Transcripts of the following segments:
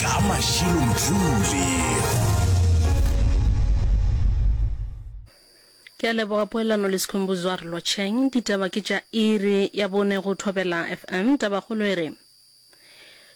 ka mašilo mthuli ke a leboga poelano le sekhumbuzwa re lotšheng ditaba ke tša iri ya bone go thobela fm tabakgolo e re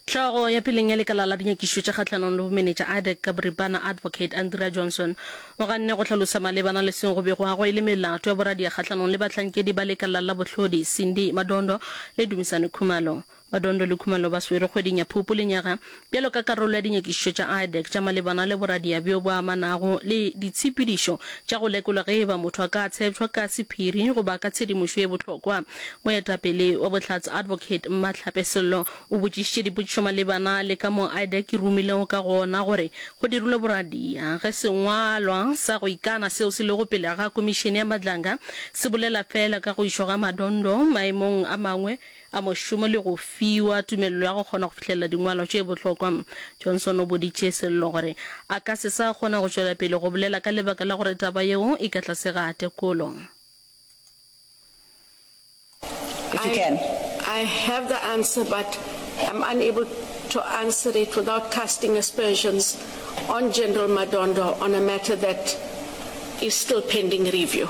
Tlhogo ya peleng ya lekala la dinyakišo tša kgahlanong le bomenetša IDEC ka boripana Advocate Andrea Johnson o ganne go hlalosa malebana le seo go bego go e le melato ya boradia kgahlanong le bahlankedi ba lekala la bohlodi Cindy Madondo le Dumisane Khumalo. Badondo le Khumalo ba swere kgweding ya Phupu lenyaga bjalo ka karolo ya dinyakišišo tša IDEC tša malebana le boradia bjo bo amanago le ditshepedišo tša go lekolwa ge e ba motho a ka tshepšwa ka sephiri goba ka tshedimošo ye bohlokwa. Moetapele wa Bohlatse Advocate Mmatlhape Sello o botšišitše dipotšišo malebana le ka moo IDEC e rumilego ka gona gore go dirilwe boradia ge sengwalwa sa go ikana seo se lego pele ga Komišene ya Madlanga se bolela feela ka go išwa ga Madondo maemong a mangwe a mošomo le go fiwa tumelelo ya go kgona go fihlelela dingwalwa tše bohlokwa. Johnson o boditše Sello gore a ka se sa kgona go tšwela pele go bolela ka lebaka la gore taba yeo e ka tlase ga tekolo. If you can. I, I have the answer but I'm unable to answer it without casting aspersions on General Madondo on a matter that is still pending review.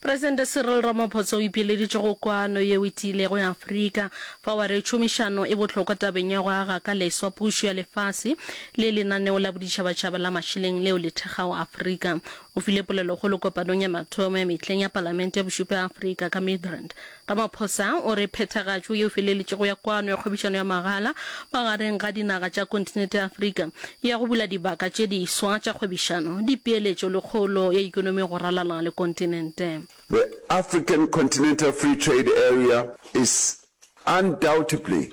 Presidente Cyril Ramaphosa o ipileditše go kwano yeo e tiilego ya Afrika fao a re tšhomišano e bohlokwa tabeng ya go aga ka leswa pušo ya lefase le lenaneo la boditšhabatšhaba la mašeleng leo le thekgago Afrika. O file polelokgolo kopanong ya mathomo ya mehleng ya Palamente ya Bošupa ya Afrika ka Midrand Ramaphosa o re phethagatšo yeo feleletšego ya kwano ya kgwebišano ya magala magareng ga dinaga tša kontinete ya Afrika ya go bula dibaka tše diswa tša kgwebišano, dipeeletšo le kgolo ya ikonomi go ralala le kontinente. The African Continental Free Trade Area is undoubtedly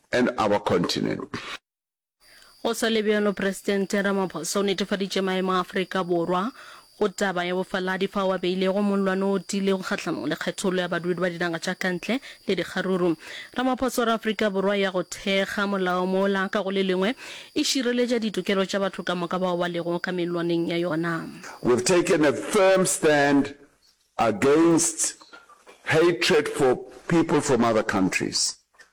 and our continent. Go sa le bjalo, Presidente Ramaphosa o netefaditše maemo a Afrika Borwa go taba ya bofaladi fao a beilego mollwane o tiilego kgahlanong le kgethollo ya badudi ba dinaga tša kantle le dikgaruru. Ramaphosa o re Afrika Borwa ya go thekga molao mola ka go le lengwe e šireletša ditokelo tša batho ka moka bao ba lego ka mellwaneng ya yona. We've taken a firm stand against hatred for people from other countries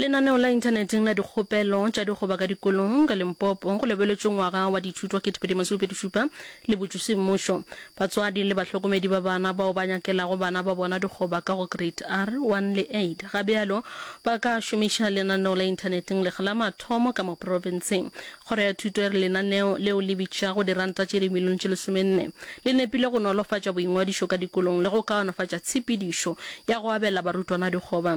Lenaneo la inthaneteng la dikgopelo tša dikgoba ka dikolong ka Limpopo go lebeletšwe ngwaga wa dithuto 2027 le botšusi mmušo. Batswadi le bahlokomedi ba bana bao ba nyakelago bana ba bona dikgoba ka go Grade R, one le eight ga bjalo ba ka šomiša lenaneo la inthaneteng lekga la mathomo ka mo profenseng. Kgoro ya Thuto e re lenaneo leo le bitšago diranta tše dimilione tše lesomenne le nepile go nolofatša boingwadišo ka dikolong le go kaonafatša tshepedišo ya go abela barutwana dikgoba.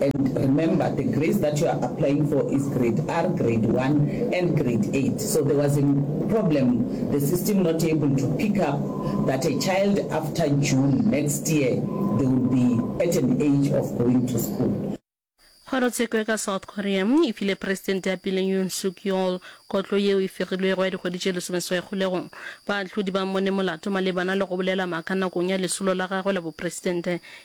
And remember the grades that you are applying for is grade R, grade one and grade eight so there was a problem the system not able to pick up that a child after June next year they will be at an age of going to school. Kgorotsheko ka South Korea e file Presidente ya pele Yoon Suk Yeol kotlo yeo e fegilwego ya dikgwedi tše lesomeswai kgolegong. Baahlodi ba mmone molato malebana le go bolela maaka nakong ya lesolo la gagwe la bopresidente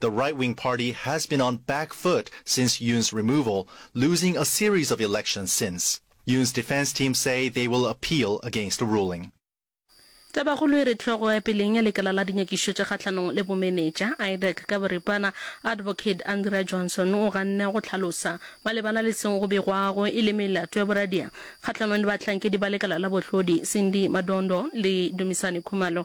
The right-wing party has been on back foot since Yoon's removal, losing a series of elections since. Yoon's defense team say they will appeal against the ruling. Tabakgolo e re hlogo ya peleng ya lekala la dinyakišo tša kgahlanong le bomenetša, IDAC, ka boripana, Advocate Andrea Johnson o ganne go hlalosa malebana le seo go begwago e le melato ya boradia kgahlanong le bahlankedi ba lekala la bohlodi, Cindy Madondo le Dumisani Khumalo,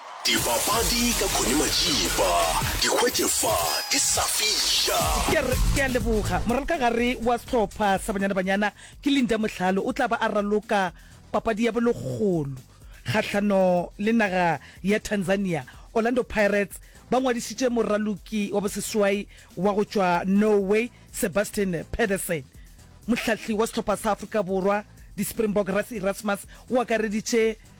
Dibapadi ka Connie Matšipa, di hwetše fa ke sa fiša. Ke a re, ke a leboga. Moralkagare wa sehlopha sa Banyana Banyana ke Linda Mohlalo o tla ba a raloka papadi ya bolekgolo kgahlano le naga ya Tanzania. Orlando Pirates ba ngwadišitše moraloki wa boseswai wa go tšwa Norway Sebastian Pedersen. Mohlahli wa sehlopha sa Afrika Borwa, di-Springbok, Rassie Erasmus o akareditše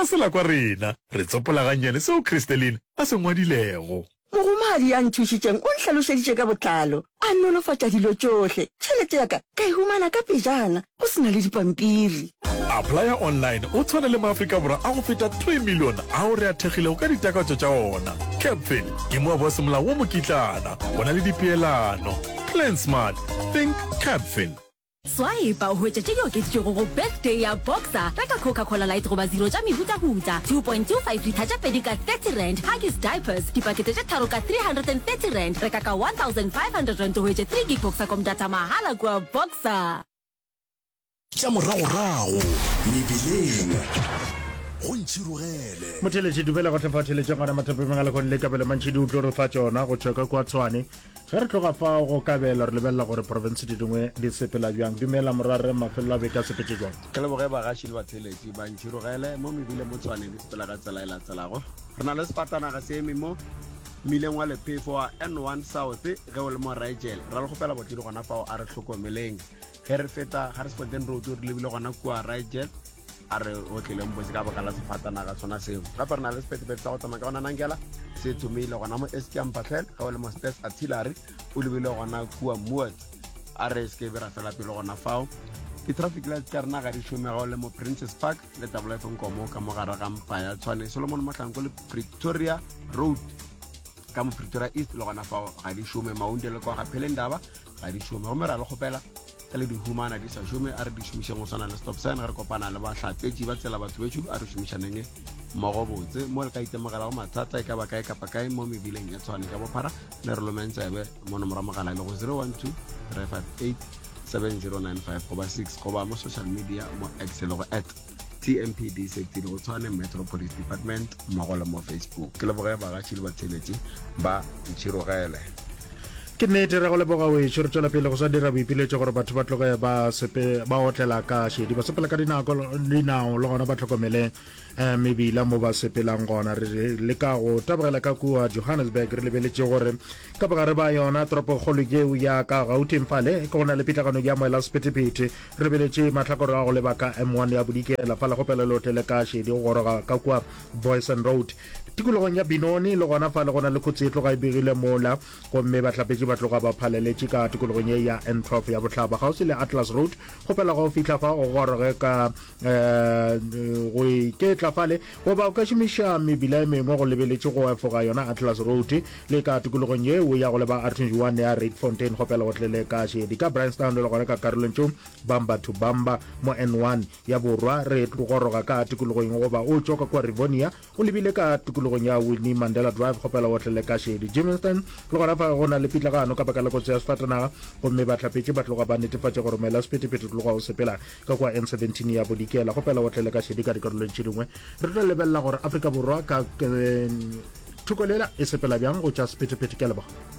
Bja sela kwa rena, re tsopola gannyane seo Christelyn a se ngwadilego. Mohumagadi ya nthušitšeng o nhlalošeditše ka botlalo, a nolofatša dilo tšohle. Tšhelete ya ka ka e humana ka pejana, go se na le dipampiri. Applya Online o tshwana le Maafrika Borwa a go feta three million ao re a thekgilego ka ditakatso tša ona. Capfin ke moabo wa semolao wo mokitlana, go na le dipeelano. Plan Smart, Think Capfin. Swaipa o hwetše tše di okeditšwego go Birthday ya Boxer, reka Coca-Cola Light goba Zero tša mehutahuta, 2.25 litha tše pedi ka R30, Huggies Diapers, dipakete tše tharo ka R330, reka ka R1,500 o hwetše 3 gig Boxacom data mahala kua Boxer. Tša moragorago mebileng go ntšhirogele. Motheletši, dumela go hle fa o theletše gona mathapemeng a lekgone le kabelo mantšhi di utlo re fa tšona go tšwa ka kua Tshwane. Ge re tloga fao go kabelo, re lebelela gore profense di dingwe di sepela bjang. Dumela, Morwarre, mafelelo a beke a sepetše bjang? Ke leboge bagaši le batheeletši. Ba ntšhirogele mo mebile mo Tshwane di sepela ka tsela e latelago. Re na le sefatanaga se eme mo mmileng wa lephefo wa N1 South. Ge o le mo Rigel, ra le kgopela botledi gona fao, a re hlokomeleng. Ge re feta Harrisburgton Road re lebile gona kua Ryjet, a re o tlileng botse ka baka la sefatanaga sona seo. Gape re na le sepetepeete sa go tsamaya ka gona Nangela se thomile gona mo Eskiam Patlhel, ge o le mo Stairs Artillery o lebile gona kua Moord, a re se ke be ra fela pelo gona fao. Di-traffic lights tša rena ga di šome ge o le mo Princes Park le Double F Nkomo ka mo gare ga mpa ya Tshwane, Solomon Mohlanko le Pretoria Road ka mo Pretoria East le gona fao ga di šome. Maunde le kwa ga Phelendaba ga di šome gomme ra le kgopela ge le di humana di sa šome a re di šomišeng go swana le stop sign ge re kopana le bahlapetši ba tsela batho betšo a re šomišaneng mmogo botse mo le ka itemogelago mathata e ka ba kae kapa kae mo mebileng e tshwane ka bophara le re lomeng tsebe mo nomora mogala le go 012 358 7095 goba 6 goba mo social media mo x le go at tmpd setsile go tshwane metro police department mmogo le mo facebook ke leboge bagaši le batheletši ba ntšhirogele ke nnete re go leboga wešo re tswela pele go sa dira boipiletšo gore batho ba tloge ba sepe ba otlela ka šedi ba sepela ka dinako dinao le gona ba tlhokomele um mebila mo ba sepelang gona re le ka go tabogela ka kua johannesburg re lebeletše gore ka bogare ba yona toropokgolo yeo ya ka gauteng fale ke go na le pitlagano ya moela sephethephethe Re beletše mahlakore a go leba ka M1 ya Bodikela, fa legopelelo tle le ka šedi go goroga ka kua Booysen Road, tikologong ya Benoni, le gona fale go na le khutsi e tloga e begile mola, gomme bahlapetši ba tloga ba phaleletše ka tikologong ye ya N12 ya Bohlaba, kgauswi le Atlas Road. Kgopela ga o fihla fa o goroge ka eh, go iketla fale, Goba o ka šomiša mebila e mengwe go lebeletše go efoga yona Atlas Road le ka tokologong ye o ya go leba R21 ya Rietfontein go pele go tlele ka šedi ka Bryanstown le gona ka karolong tšo Bamba to Bamba mo N1 ya borwa re goroga ka tokologong goba o tšoka kua Rivonia o lebile ka tokologong ya Winnie Mandela Drive go pele go tlele ka šedi Germiston le gona fa go na le pitlagano ka baka la kotsi ya sefatanaga gomme bahlapetše ba tloga ba netefatša gore mela sephethephethe tloga o sepela Ka kua N17 ya Bodikela, go pela o tlele ka šedi ka dikarolong tše dingwe. Re tlo lebelela gore Afrika Borwa ka eh, thoko lela e sepela bjang go tša sephethephethe. Ke a leboga.